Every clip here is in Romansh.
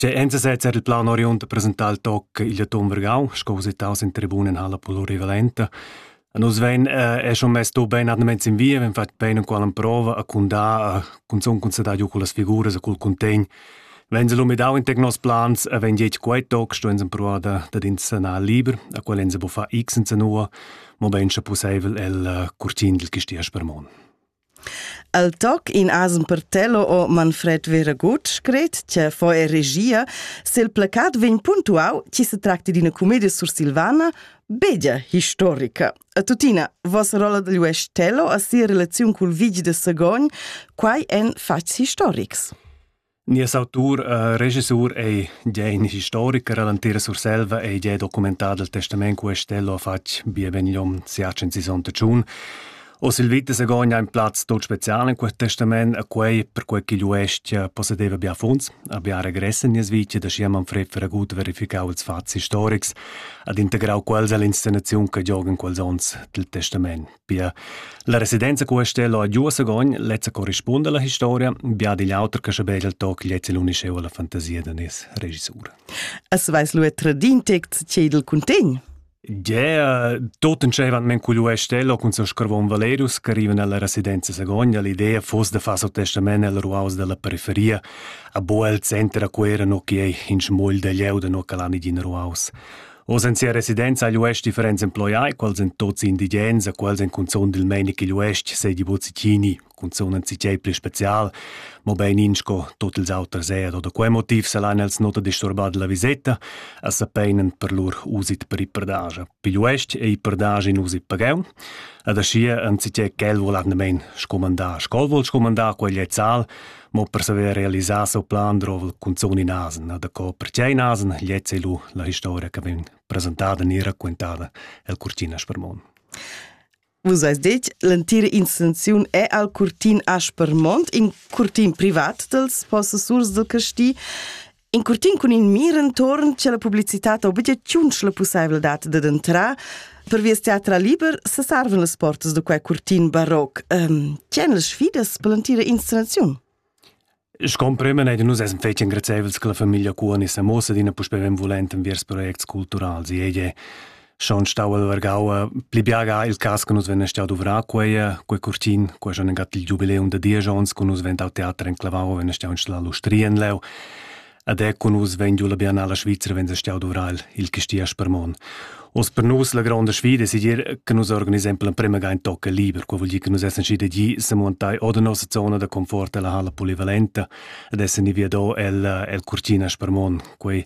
Cioè, einsatz era il plan oriund presentar il toc il Atom Vergau, sco usitaus in tribunen halla plurivalenta. A nus ven eh, è schon messo ben andaments in via, ven fatg bene qual an prova a cundà a cunzun cunzadà giu con las figuras a cul contegn. Wenn se l'umidau in tec nos plans, a ven dietg quei toc sto ens proa da da din sanar liber, a qual ens bo fa x in sanua, mo ben sche pusseivel el eh, curtin dil gistia spermon. El toc in asm per tello o Manfred Veraguth scret che fo e regia se il placat vegn puntuau chi se tracti d'una commedia sursilvana beggia historica. A tuttina, vos rolla degl Uestello a sia relaziun cul vigi de Sagogn, quai en facts historics. Nies autur e regisur ei gie in historicher all'entira Surselva e gie documentado il testament Cuestello ha fatg bia benigliom siat sessanta tschun. Oz il vita Segogna ha in plaz tot special in quel testament e quei per quei ch'igl uestg possedeva bia funds, a bia regress en nies vita da schi Manfred Feragut verificau ils fats historics ed integrau quels all'inscenaziun che gioga in quels onns dil testament. Pia. La residenza cu Estella ha giu a Sagogn lezza corrispunda alla historia, bia digl auter che shabel il toc lezza l'unisceu alla fantasia da nies regissur. As veis lu tradin text che dil cuntegn? Yeah, tot entschevan men cugliu Estella cun son scarvon Valerus che arrivan alla residenza Sagogna, l'idea fosse de far so testament al ruaus della periferia, a bo el center a quera no che ei in smol de leu de no calani din ruaus. Oz en sia residenza agl uest differents emploiai, quals en tots indigens a quals en cunzun dil meini ch'igl uest sei di Bozicini, cunzun en citiei pli special, mobein in sco tot ils auters er, oder quei motiv salan els nota disturbar della viseta, a sapeinen per lur usit per iperdagia. Pigl uest ei iperdagia in usit pagau, ad aschia en citiei quel volan nemen scomandar, scol vol scomandar quegl ezzal, Mo per saver realisar seu plan drovel cunzun in asen, e daco pertgei in asen gliez ei lu la historia che vegn presentada ni raccontada el Curtina Spermon. Vus eis detg, l'entira intenziun è al curtin Aspermont, in curtin privat dels possessurs del casti, In curtin cun in mir entorn c'è la publicità obligaziun la pussaiveldat da entrar Per vies teatra liber se sarven las portas da quei curtin baroc. Ähm, C'en las sfidas per l'antira installaziun? Ich comprime nicht, nus essen fetg engrazievels che la famiglia Cuani se mossa d'ina puspè benvolent enviers projects culturals. Jede schon stau el vargau pli biaga il cas che nus vennen stau duvrar quei quei curtin quei schon in gat il giubileum da Diejons che nus vennen dal teater in clavau vennen stau install l'ustria in leu Ad ecco nus vegn giu la biennala Svizra wenn se stau dovrar il Chistia Spermon. Os per nus la gronda sfida si dir che nus organisiamo la prima gain tocca liber, quo vuol dir che nus essen schi degli se montai o da nossa zona da confort della hala polivalenta, ad essen ni via do el, el Curtina Spermon, quei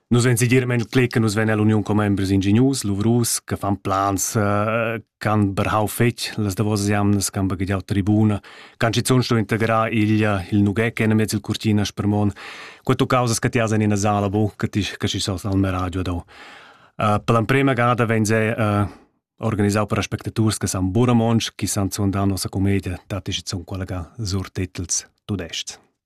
Nus vein segirament cler che nus vein ell'uniun commembers ingignus, luvrus, che fan plans, eh, can berhau fetg las davosas jamnas, can baghegiau tribuna, can schizun sto integrar il, il nughec enamiez il curtina spermon. Quato causas che ti has in ina sala bu, che ti che si sos al meraggio do. Uh, per l'emprema ganada vein se uh, organisau per aspectaturs che san bura monsch, chi san zun da nossa commedia, dat ich zum collega sur titels tudest.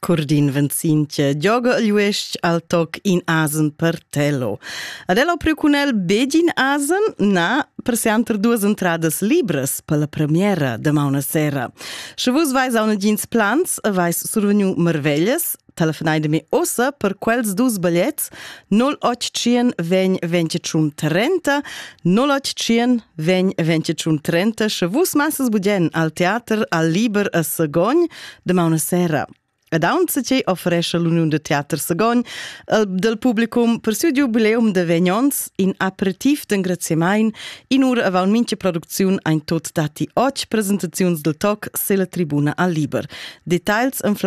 Curdin Venzinche gioga agl uestg al toc in asen per Tello. Ad el ho priu cun el begin asen? Na, per seanter duas entradas libras per la premiera damaun a sera. Sche vus vais a una jeans plans, vais survegnu marveglias, telefonai de me ossa per quels dus bagliets 0800 vegn 21 30 0800 vegn 21 30 sche vus masses budien al teater al liber a Sagogn Damauna sera. Ed aunza che offerescha l'Uniun de Teater Sagogn del publicum per siu jubileum de vegn ons in aperitiv d'engraziamain in ura aval mincha producziun ein tot dati och presentaziuns del toc sella tribuna al liber. Details en flight